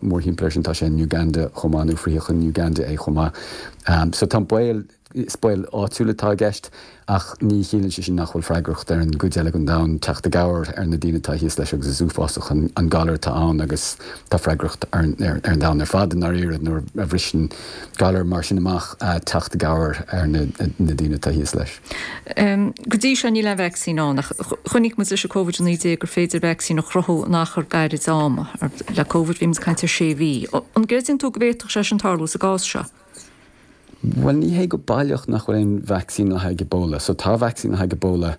Mórthimpeall air sin tá sé in Uganda chomh maith, nó frítheadh in Uganda é chomh maith. So tá baol, is baol áitiúil atá i gceist ach ní chiallaíonn sé sin nach bhfuil freagracht ar an gcuid eile den domhan teacht i gcabhair ar na daoine atá thíos leis agus is uafásach an galar atá ann agus tá freagracht ar an domhan ar fad, i ndáiríre, nuair a bhriseann galar mar sin amach, teacht i gcabhair ar na daoine atá thíos leis. Go dtí seo níl aon vacsaín ann ach chonaic muid leis an Covid-19 gur féidir vacsaín a chruthú in achar gairid ama. Le Covid bhí muid ag caint ar sé mhí. An gcreideann tú go bhféadfadh sé sin tarlú sa gcás seo? Bhuel ní hé go baileach nach bhfuil aon vacsaín le haghaidh Ebola. So tá vacsaín le haghaidh Ebola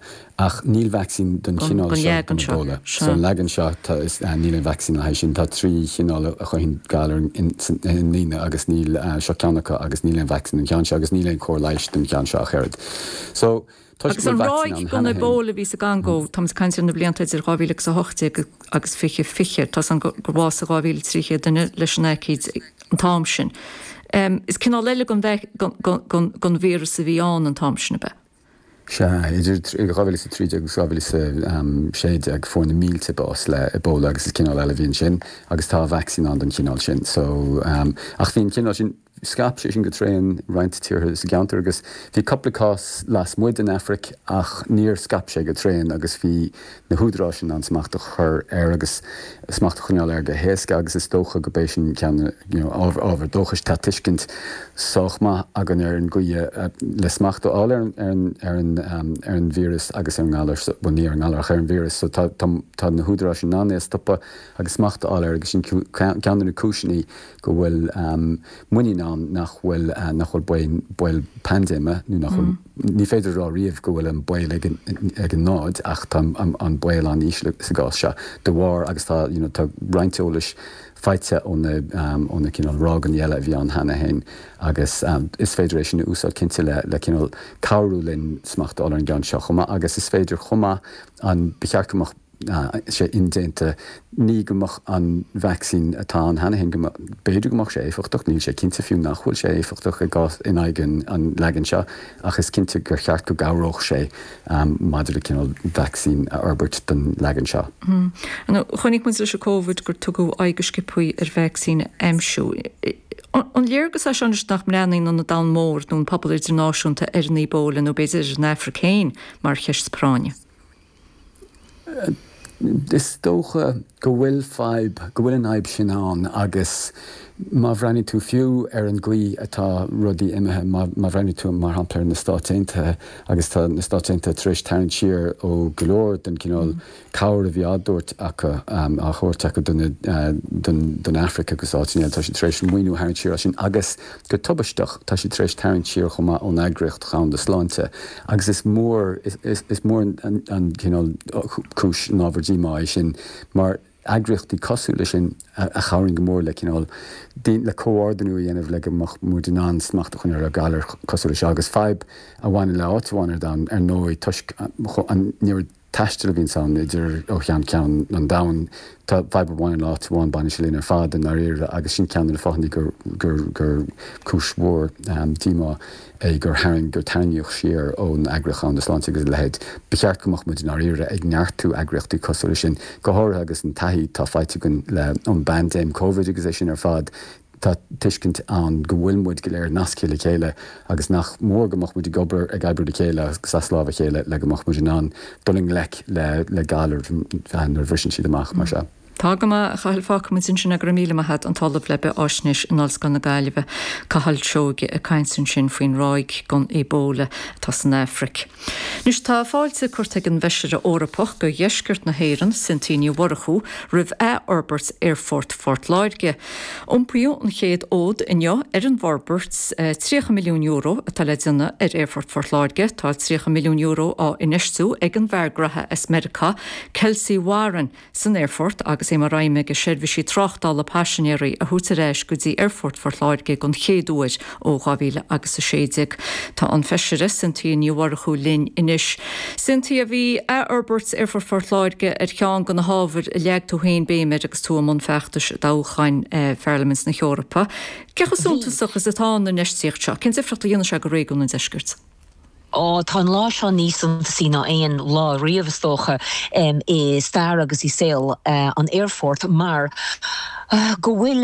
ach níl vacsaín don chineál seo den Ebola. Don leagan seo. Don leagan seo tá, níl aon vacsaín le haghaidh sin. Tá trí chineál. a chothaíonn galair i ndaoine agus ní seo ceann acu agus níl aon vacsaín don cheann seo agus níl aon chóir leighis don cheann seo ach oiread. So, toisc go bhfuil vacsaín ann cheana féin. Ebola a bhí sa gCongó, tá muid ag caint ar na blianta idir 2018 agus 2020, tá's againn gur bhásaigh 2300 duine leis an aicíd an t-am sin. Is cineál eile den den den den víreas a bhí ann an t-am sin ab ea? Sea, idir 2013 agus 2016, fuair na mílte bás le Ebola agus is cineál eile a bhí ansin agus tá vacsaín ann don chineál sin. So, ach bhí an cineál sin, scaip sé sin go tréan i roinnt tíortha sa gceantar agus bhí cúpla cás lasmuigh den Afraic ach níor scaip sé go tréan agus bhí na húdaráis in ann smacht a chur air agus smacht a choinneáil air go héasca agus is dócha gurb é sin ceann ábhar dóchais. Tá tuiscint sách maith againn ar an gcaoi le smacht a fháil ar an víreas agus ar an ngalar, bhuel ní ar an ngalar ach ar an víreas, so tá na húdaráis in ann é a stopadh agus smacht a fháil air agus sin ceann de na cúiseanna go bhfuil muinín ann nach bhfuil baol paindéime, nó nach bhfuil, ní féidir a rá riamh go bhfuil an baol ag an náid ach tá an baol an-íseal sa gcás seo de bharr, agus tá you know tá roinnt eolais faighte ó na ó na cineál ráigeanna eile a bhí ann cheana féin agus is féidir é sin a úsáid cinnte le le cineál cabhrú linn smacht a fháil ar an gceann seo chomh maith agus is féidir chomh maith an, ba cheart go mbeadh sé indéanta, ní go mbeadh an vacsaín atá ann cheana féin, go mbeadh, b'fhéidir go mbeadh sé éifeachtach, níl sé cinnte fiú nach bhfuil sé éifeachtach i gcás, in aghaidh an leagain seo, ach is cinnte gur cheart go gcabhródh sé maidir le cineál vacsaín a fhorbairt don leagan seo. Nó, chonaic muid leis an Covid gur tugadh aghaidh go sciopthaí ar vacsaín a aimsiú. An léir duitse anois nach mbreathnaíonn an an domhan mór nó an pobal idirnáisiúnta ar an Ebola, nó b'fhéidir ar an Afraic féin, mar cheist práinne? Is dócha go bhfuil fadhb, go bhfuil an fhadhb sin ann agus má bhreathnaíonn tú fiú ar an gcaoi atá rudaí imithe, má bhreathnaíonn tú, mar shampla, ar na Stáit Aontaithe agus tá na Stáit Aontaithe tar éis tarraingt siar ó go leor den chineál cabhair a bhí á dtabhairt acu, á thabhairt acu do don Afraic agus áiteanna eile, tá siad tar éis an maoiniú a tharraingt siar as sin agus. Go tubaisteach, tá siad tar éis tarraingt siar chomh maith ón Eagraíocht Dhomhanda Sláinte agus is mór is mór an cineál cúis ábhar díomá é sin mar eagraíochtaí cosúil leis sin a chabhraíonn go mór le cineál le comhordanú a dhéanamh le go mbeadh muid in ann smacht a choinneáil ar ghalair cosúil leis seo agus fadhb a bhaineann le áit amháin ar domhan ar ndóigh toisc an méid taistil a bhíonns ann idir ó cheann ceann an domhain. Tá fadhb amháin in áit amháin, baineann sé linn ar fad i ndáiríre agus sin ceann de na fáthanna gur cúis mhór díomá é gur tharraing gur tarraingíodh siar ón eagraíocht Dhomhanda Sláinte agus a leithéid. Ba cheart go mbeadh muid i ndáiríre ag neartú eagraíochtaí cosúil leis sin, go háirithe agus an taithí atá faighte againn le ón bpaindéim Covid agus é sin ar fad Tá tuiscint ann go bhfuil muid go léir nasctha le chéile agus nach mór go mbeadh muid ag obair, ag oibriú le chéile agus as lámh a chéile le go mbeadh muid in ann dul i ngleic le le galair nuair a bhriseann siad amach mar seo. Tá go maith, a Chathail. Fágfaidh muid ansin sin agus go raibh míle maith agat an tOllamh le Bithfhaisnéis in Ollscoil na Gaillimhe, Cathal Seoige ag caint ansin faoin ráig den Ebola atá san Afraic. Anois tá fáilte curtha ag an bhFeisire Eorpach do Dheisceart na hÉireann, Cynthia Ní Mhurchú, roimh athfhorbairt Aerfort Phort Láirge. Iompaíodh an chéad fhód inniu ar an bhforbairt €30 milliún atá le déanamh ar Aerfort Phort Láirge. Tá €30 milliún á infheistiú ag an bhfear gnaithe as Meiriceá, Kelsey Warren, san aerfort agus é mar aidhm aige seirbhísí tráchtála paisinéirí a thabhairt ar ais go dtí Aerfort Phort Láirge den chéad uair ó 2000 agus 16. Tá an Feisire Cynthia Ní Mhurchú linn anois. Cynthia, bhí athfhorbairt Aerfort Phort Láirge ar cheann de na hábhair a leag tú féin béim air agus tú i mbun feachtais i dtoghcháin Pharlaimint na hEorpa. Cé chomh suntasach is atá an infheistíocht seo? Cén difríocht a dhéanfaidh sé do réigiún an deiscirt? Ó, tá an lá seo níos suntasaí ná aon lá riamh, is dócha, i stair agus i saol an aerfoirt mar go bhfuil.